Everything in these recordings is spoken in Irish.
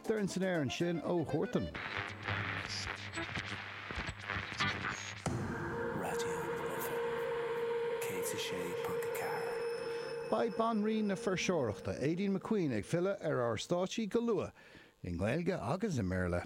Doirn san aer ansin ó Huartan. Raidió na Life 106.4. Beidh banríon na fuirseoireachta, Aideen McQueen, ag filleadh ar ár stáitsí go luath, i nGaeilge agus i mBéarla.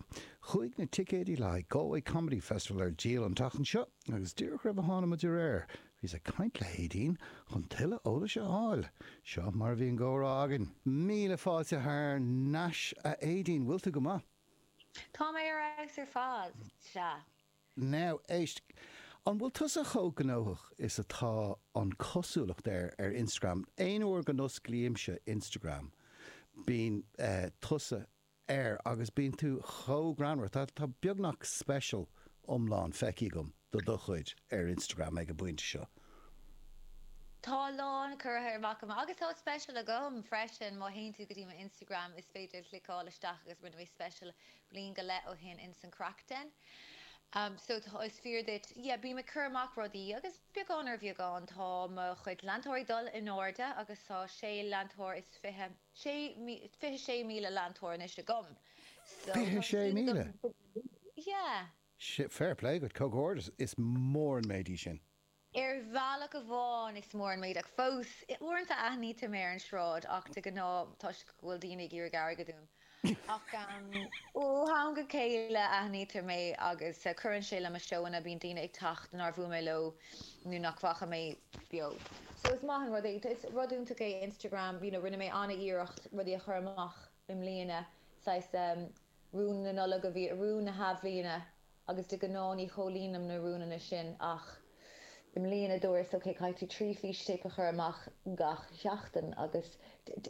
Chuaigh na ticéidí le haghaidh Galway Comedy Festival ar díol an tseachtain seo agus díreach roimh a thána muid ar aer, Bhíos ag caint le hAideen chun tuilleadh eolais a fháil. Seo mar a bhí an gcomhrá againn. Míle fáilte thar n-ais a Aideen, bhfuil tú go maith? Tá mé ar fheabhas ar fad, sea. Now, éist, an bhfuil tusa chomh gnóthach is atá an cosúlacht air ar Instagram? Aon uair go n-osclaímse Instagram bíonn tusa air agus bíonn tú chomh greannmhar. Tá beagnach special iomlán feicthe agam de do chuid ar Instagram ag an bpointe seo. Tá a lán curtha amach agam agus tá special agam freisin. Má théann tú go dtí mo Instagram is féidir cliceáil isteach agus rinne mé special bliain go leith ó shin in san Craic Den. So tá, is fíor duit, yeah bím ag cur amach rudaí agus beagán ar bheagán tá mo chuid leantóirí ag dul in airde agus tá sé leantóir is fiche, Fiche sé míle leantóir anois agam so tá an fíle agam. 26,000? Yeah. Fair play agat, comhghairdeas, is mór an méid é sin. Ar bhealach amháin is mór an méid ach fós uaireanta aithnítear mé ar an sráid ach de ghnáth toisc go bhfuil daoine ag iarraidh airgid uaim ach ó am go chéile aithnítear mé agus cuireann sé le mo seóanna, bíonn daoine ag teacht nár bhuail mé leo nó nach bhfaca mé. beo. So is maith an rud é, is rud iontach é Instagram, you know rinne mé an-iarracht rudaí a chur amach i mbliana, saghas ehm rúin na Nollag a bhí, rúin na hAthbhliana agus de ghnáth ní chomhlíonaim na rúnna sin ach i mbliana dúras ok caithfidh tú trí fístéip a chur amach gach sheachtain agus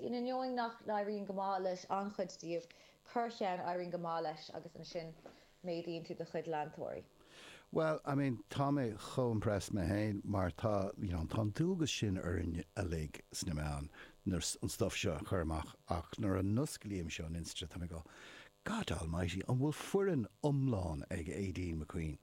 in ainneoin nach n-éiríonn go maith le an-chuid díobh, corrcheann éiríonn go maith leis agus ansin. méadaíonn tú do chuid leantóirí? Bhuel, I mean, tá mé chomh impressed mé féin mar tá, you know, tá an dualgas sin orainn uilig sna meáin, you know, an stuff seo a chur amach ach nuair a n-osclaímse an Insta tá mé ag go God Almighty, an bhfuil foireann iomlán ag Aideen McQueen?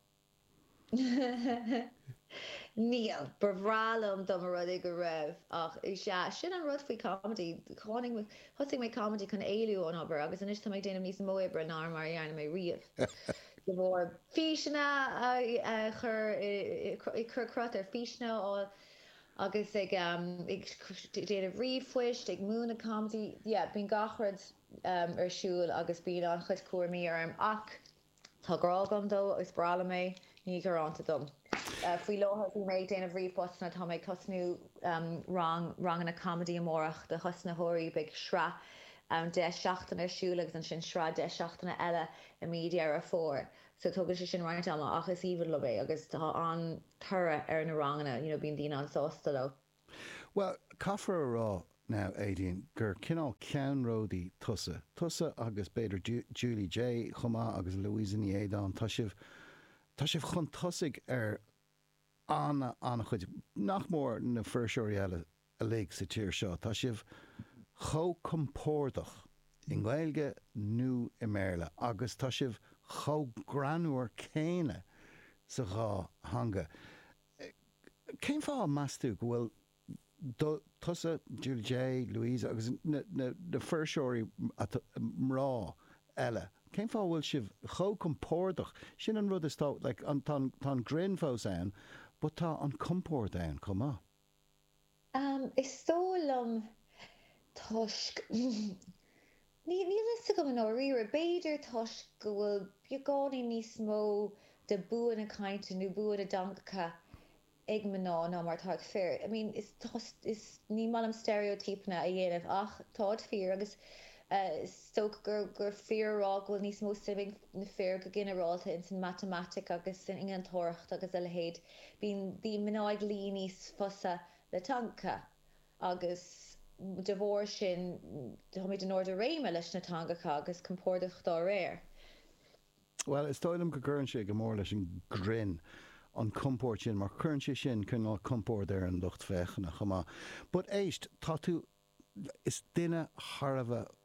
Níl. Ba bhreá liom dá mba rud é go raibh ach is ea, sin an rud faoi comedy, tháinig mé, thosaigh mé comedy chun éalú ón obair agus anois tá mé ag déanamh níos mó oibre ná mar a dhearna mé riamh de bharr físeanna a chur, ag cur cruth ar físeanna a fháil agus ag déanamh ríomhphoist, ag múineadh comedy, yeah, bíonn gach rud ar siúl agus bíonn an-chuid cúraimí orm ach. Tá grá agam dó agus is breá liom é. Ní ghearánta dom. Faoi láthair bhí mé ag déanamh ríomhphostanna. Tá mé ag tosnú rang ranganna comedy amárach do thosnaitheoirí. Beidh sraith ann deich seachtaine ar siúl agus ansin sraith deich seachtaine eile i mí Dheireadh Fómhair. So tógann sé sin roinnt ama ach is aoibhinn liom é agus tá an-toradh ar na ranganna. You know bíonn daoine an-sásta leo. Bhuel, caithfear a rá, now, Aedín, gur cineál ceannródaí tusa. Tusa agus b'fhéidir Julie Jay chomh maith agus Louisa Ní Éideáin, tá sibh, tá sibh chun tosaigh ar ana, an-chuid, nach mór, na fuirseoirí eile uilig sa tír seo. Tá sibh chomh compordach i nGaeilge nó i mBéarla agus tá sibh chomh greannmhar céanna sa dhá theanga. Cén fáth a measann tú go bhfuil tusa, Julie Jay, Louise agus na fuirseoirí mná eile, cén fáth a bhfuil sibh chomh compordach, sin an rud is dócha, like tá an greann fós ann but tá an compord ann chomh maith. Is dóigh liom toisc, níl a fhios agam i ndáiríre, b'fhéidir toisc go bhfuil beagáinín níos mó de bua na cainte nó bua na dteangacha ag mná ná mar atá ag fir. I mean, is, ní maith liom steiréotípeanna a dhéanamh ach táid fíor agus is dócha gur fíor a rá go bhfuil níos mó suime ag na fir go ginearálta ins an matamaitic agus san innealtóireacht agus a leithéid. Bíonn mná ag luí níos fusa le teangacha agus de bharr sin táimid in ard ár réime leis na teangacha agus compordach dá réir. Bhuel, is dóigh liom go gcuireann sé go mór leis an ngrinn, an compord sin, mar cuireann sé sin cineál compoird ar an lucht féachana chomh maith. But éist, tá tú is duine thar a bheith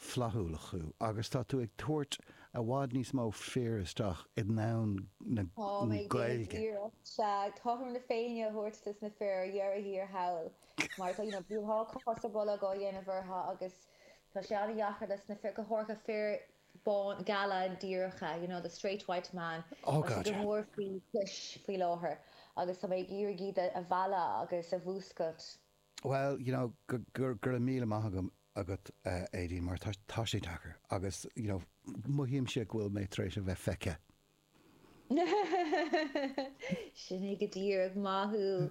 flaithiúil thú agus tá tú ag tabhairt i bhfad níos mó fir isteach i ndomhan na Gaeilge. Táim ag déanamh iarracht, sea, cothrom na Féinne a thabhairt dos na fir ar dheireadh thiar thall mar tá, you know, bíonn cos ar bolg á dhéanamh orthu agus tá sé an-deacair dos na fir, go háirithe fir bána, geala, díreacha, you know, the straight white man, Oh god, yeah. tá sé go mór faoi chois faoi láthair agus tá mé ag iarraidh iad a mhealladh agus a mhúscailt. Bhuel, you know, go raibh míle maith agat, a Aedín, mar tá sé deacair agus, you know, mothaímse go bhfuil mé tar éis a bheith feicthe. Sin é go díreach. Maith thú.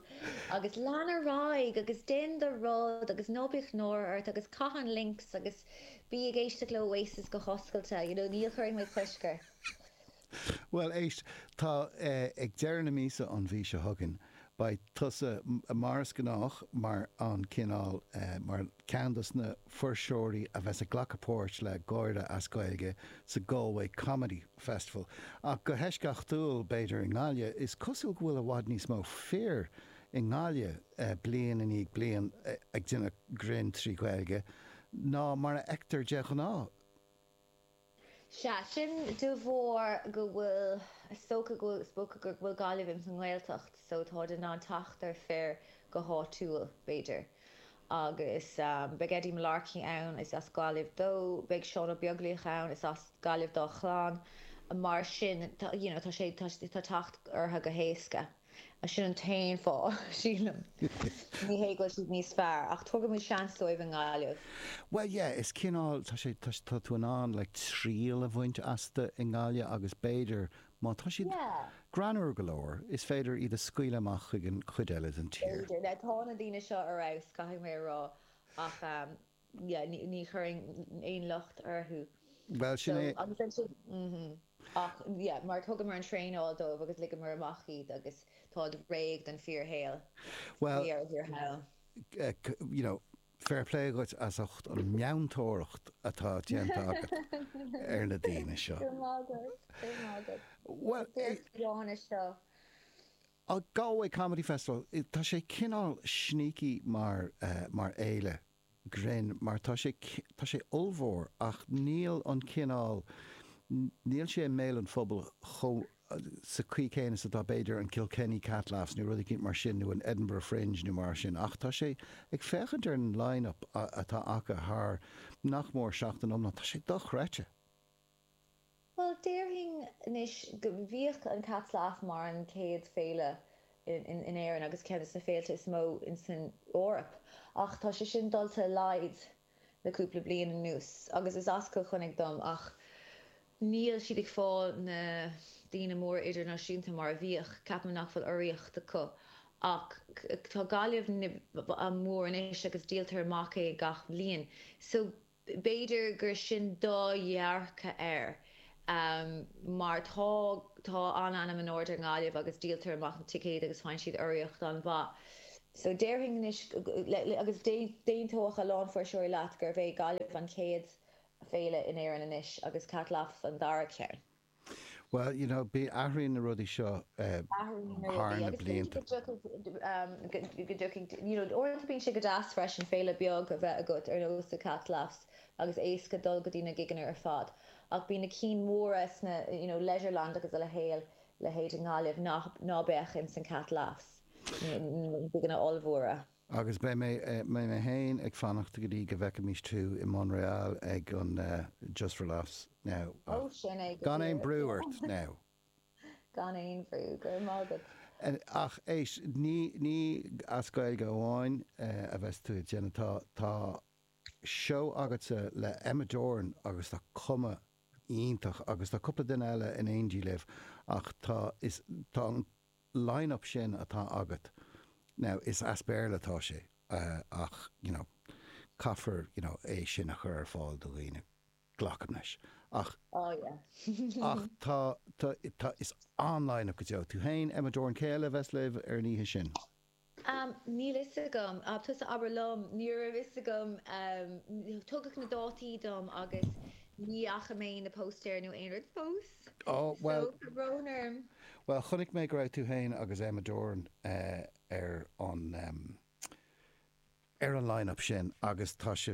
Agus lean ar aghaidh agus déan do rud agus ná bíodh náire ort agus caith an Lynx agus bí ag éisteacht le Oasis go hoscailte, you know, ní chuirfidh mé cosc ort. Bhuel, éist, tá, ag deireadh na míosa, an mhí seo chugainn, beidh tusa, mar is gnách, mar an cineál, mar cheann de na fuirseoirí a bheas ag glacadh páirt le Gáire as Gaeilge sa Galway Comedy Festival, ach go heisceachtúil, b'fhéidir, i nGaillimh. Is cosúil go bhfuil i bhfad níos mó fir i nGaillimh, bliain i ndiaidh bliain, ag déanamh grinn trí Ghaeilge ná mar a fheictear de ghnáth. Sea, sin de bharr go bhfuil, is dócha go, is dócha go bhfuil Gaillimh ins an nGaeltacht so táid in ann teacht ar fir go háitiúil, b'fhéidir. Agus beidh Eddie Mullarkey ann, is as Gaillimh dó, beidh Seán Ó Beaglaoich ann, is as Gaillimh dá chlann, mar sin tá, you know, tá sé, tá teacht ortha go héasca. Sin an t-aon fáth, sílim. Ní hé go bhfuil siad níos fearr, ach tugaimid seans dóibh i nGaillimh. Bhuel, yeah, is cineál, tá sé, tá, tá tú in ann, like, triail a bhaint astu i nGaillimh agus b'fhéidir, má tá siad greannmhar go leor, is féidir iad a scaoileadh amach chuig an chuid eile den tír. B'fhéidir. Now, tá na daoine seo ar fheabhas, caithfidh mé a rá, ach, ní chuirfinn aon locht orthu ach yeah mar thugamar an traenáil dóibh agus ligeamar amach iad agus táid réidh don fíorshaol. Bhuel, you know fair play dhuit as ucht an mheantóireacht atá déanta agat ar na daoine seo. Go raibh maith agat, go raibh maith agat. Bhuel, Féach John isteach. Tá Galway Comedy Festival, tá sé cineál sneaky mar, mar fhéile grinn mar tá sé, tá sé ollmhór ach níl an cineál, níl sé i mbéal an phobail chomh, sa chaoi chéanna is atá b'fhéidir an Kilkenny Cat Laughs nó rud eicínt mar sin nó an Edinburgh Fringe nó mar sin ach tá sé, ag féachaint ar an line-up atá acu thar nach mór seachtain iomlán, tá sé dochreidte. Bhuel, déarfainn anois go, bhíodh an Cat Laughs mar an chéad féile in Éirinn agus ceann de na féilte is mó insan Eoraip ach tá sé sin dulta i laghad le cúpla bliain anuas agus is as Cill Chainnigh dom ach níl siad ag fáilt na daoine móra idirnáisiúnta mar a bhíodh. Ceapaim nach bhfuil urraíocht acu ach tá Gaillimh mór anois agus díoltar amach é gach bhliain so, B'fhéidir gur sin do dhearcadh air mar tá tá an-ainm in airde ar Gaillimh agus díoltar amach na ticéid agus faigheann siad urraíocht an-mhaith. So déarfainn anois agus d'aontódh a lán fuirseoirí leat gurb é Gaillimh an chéad féile in Éirinn anois agus Cat Laughs an dara ceann. Bhuel, you know, bí, athraíonn na rudaí seo Athraíonn na rudaí thar na blianta. Agus b'fhéidir go dtiocfaidh, um, go, go dtiocfaidh, you know, uaireanta bíonn sé go deas freisin féile bheag a bheith agat ar nós The Cat Laughs agus éasca dul go dtí na gigeanna ar fad ach bíonn na cinn mhóra sna, you know, Leisureland agus a leithéil, leithéid i nGaillimh nach, ná beadh ins an Cat Laughs, na gigeanna ollmhóra. Agus beidh mé féin ag fanacht go dtí go bhfeicfimis tú i Montréal ag an Just for Laughs now ach gan aon brú ort now! Gan aon bhrú, go raibh maith agat. Ach éist, ní as Gaeilge amháin a bheas tú ag déanamh, tá seó agatsa le Emma Doran agus tá cuma iontach agus tá cúpla duine eile in éindí libh ach tá an line-up sin atá agat now is as Béarla atá sé ach you know caithfear é sin a chur ar fáil do dhaoine, glacaim leis ach, oh yeah ach tá, tá, tá, is an-line-up go deo. Tú féin, Emma Doran, cé eile a bheas libh ar an oíche sin? Am, Níl 'fhios agam. Tusa abair liom. Ní raibh 'fhios agam. Tugadh na dátaí dom agus ní fhaca mé na póstaeir nó aon rud fós. Ó, So, bhuel. tá brón orm. Bhuel, chonaic mé go raibh tú féin agus Emma Doran ar an ar an line-up sin agus tá sé,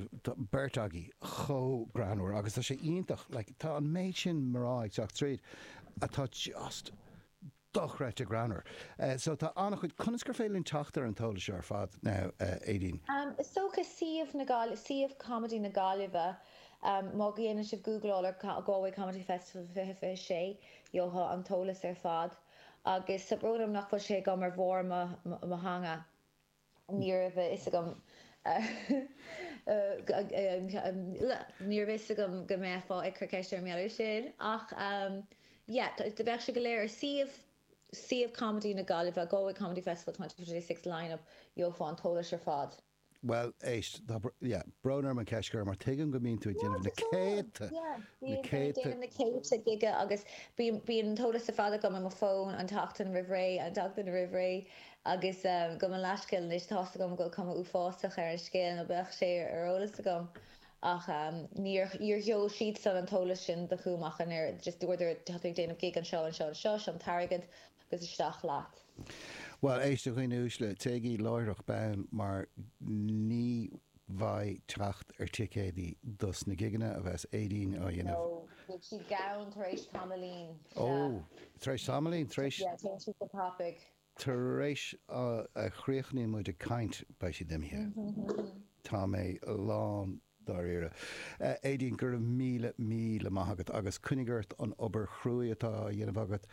beirt agaibh chomh greannmhar agus tá sé iontach, like tá an méid sin mná ag teacht tríd atá just dochreidte greannmhar. So tá an-chuid, conas gur féidir linn teacht ar an t-eolas seo ar fad now Aideen? Is dócha suíomh na Gaillimhe, suíomh Comedy na Gaillimhe má dhéanann sibh gúgláil ar Galway Comedy Festival 2026 gheofá an t-eolas ar fad agus tá brón orm nach bhfuil sé agam ar bharr mo theanga. Ní raibh a fhios agam Ní raibh a fhios agam go mbeifeá ag cur ceiste ar an mbealach sin ach yeah bheadh sé go léir ar suíomh suíomh comedy na Gaillimhe Galway Comedy Festival twenty twenty six line-up gheofá an t-eolas ar fad. Bhuel éist tá yeah brón orm an cheist a chur mar tuigim go mbíonn tú ag déanamh na céadta na céadta na céadta gig agus bíonn bíonn an t-eolas ar fad agam ar mo fón an tseachtain roimh ré an tseachtain roimh ré. Agus gabh mo leathscéal anois, tá's agam go bhfuil cuma uafásach ar an scéal nó bheadh sé ar eolas agam ach níor sheol siadsan an t-eolas sin chugam ach an oiread, just dúradar tá tú ag déanamh gig anseo, anseo, anseo, seo an t-airgead agus isteach leat. Bhuel, éist a dhaoine uaisle, téigí láithreach bonn mar ní bheidh teacht ar ticéadaí dos na gigeanna a bheas Aideen á dhéanamh. No, beidh siad gann tar éis tamaillín, sea. Oh, tar éis tamaillín, tar éis? Yeah, téann siad go tapaigh. Tar éis a chríochnaíonn muid ag caint beidh siad imithe. Tá mé lán dáiríre. Aedín, go raibh míle, míle maith agat agus coinnigh ort an obair chruaidh atá á dhéanamh agat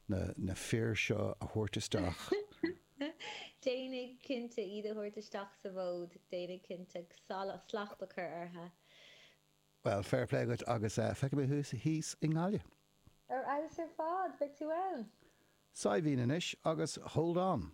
na fir seo a thabhairt isteach. Déanfaidh, cinnte, iad a thabhairt isteach sa bhfód, déanfaidh, cinnte, slacht a chur orthu. Bhuel, fair play agat agus feicfidh mé thú thíos i nGaillimh. Ar fheabhas ar fad! Beidh tú ann? Saidhbhín anois agus Hold On.